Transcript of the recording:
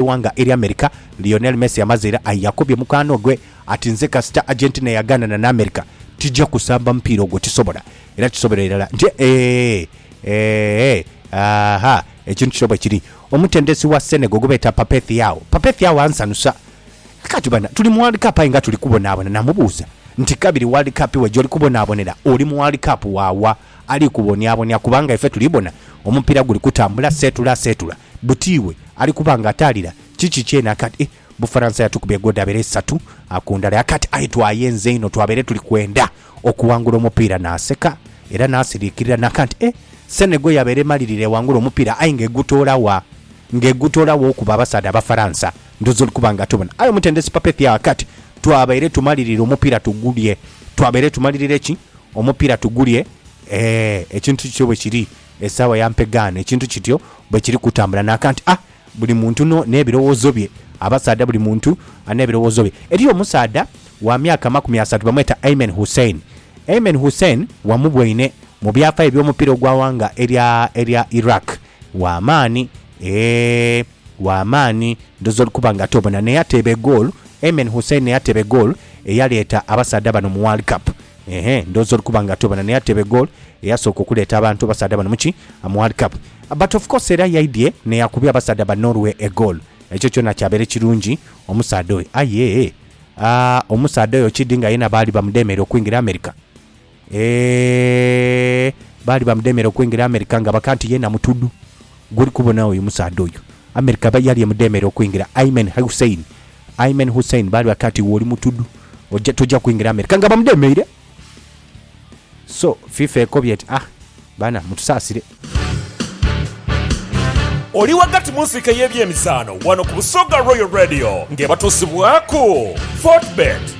Eighanga erya America, Lionel Messi amaze era aye yakobye mukwano gwe ati, Nze kasita Argentina eyagaanana n'America, tija kusamba mupiira ogwo. Tisobola. Era tisobera irala nti eehh, eehh, aahha. Ekintu kino bwe kiri. Omutendesi wa Senegal gwe beeta Pape Thiaw, Pape Thiaw ansanusa. Kaati bana, tuli mu World Cup aye nga tuli kubonaabona. Namubuuza nti, Kabiri World Cup we gy'oli kubonaabonera, oli mu World Cup wa wa ali kubonyabonya? Kubanga ife tuli bona omupiira guli kutambula, seetula seetula. buti iwe ali kuba nga ataalira kiki kyene aka ati, Eh, Bufaransa yatukubye ggoodi abere isatu ku ndala. Aka ati, Aye twayenze inho, twabere tuli kwenda okuwangula omupiira. Naaseka era naasiriikirira n'aka nti, Eh, Senegal yabere emalirira ewangule omupiira aye nga egutoola wa? Nga egutoola wa okuba abasaadha Abafaransa? Ndhooza oli kuba nga tobona. Aye omutendesi Papethiah aka ati, Twabere tumalirira omupiira tugulye. Twabere tumalirira ki? Omupiira tugulye. Ee, ekintu kityo bwe kiri. Esaawa ya mpegaano ekintu kityo bwe kiri kutambula naaka nti a buli muntu no n'ebirowoozo bye. Abasaadha buli muntu alina ebirowoozo bye. Eriyo omusaadha wa myaka amakumi asatu bamweta Ayman Hussein. Ayman Hussein wamuboine mu byafaayo by'omupiira ogwa ghanga erya erya Iraq. Wa maani, eeh wa maani. Ndhooza oli kuba nga tobona n'eyateeba egoolu, Ayman Hussein n'eyateeba egoolu eyaleeta abasaadha bano mu World Cup. Eehh ndhooza oli kuba nga atwebana naye ate be goal eyasooka okuleeta abantu abasaadha bano muki mu World Cup. But of course era yaidhye neyakubya abasaadha ba Norway e goal. Ekyo kyona kyabeere kirungi omusaadha oyo aye aah omusaadha oyo kidhi nga yena baali bamudemeera okwingira America eehh baali bamudemeera okwingira America nga baka nti yena mutudhu. Gwoli kubona oyo musaadha oyo. America aba yali emudheemera okwingira. Ayman Hussein Ayman Hussein baali bati ati iwe oli mutudu oja toja kwingira America nga bamudheemeire. So FIFA ekobye eti ah baana mutusaasire. Oli ghagati mu nsiike y'ebyemizaano wano ku Busoga Royal Radio ng'ebatuusibwaku Fortebet.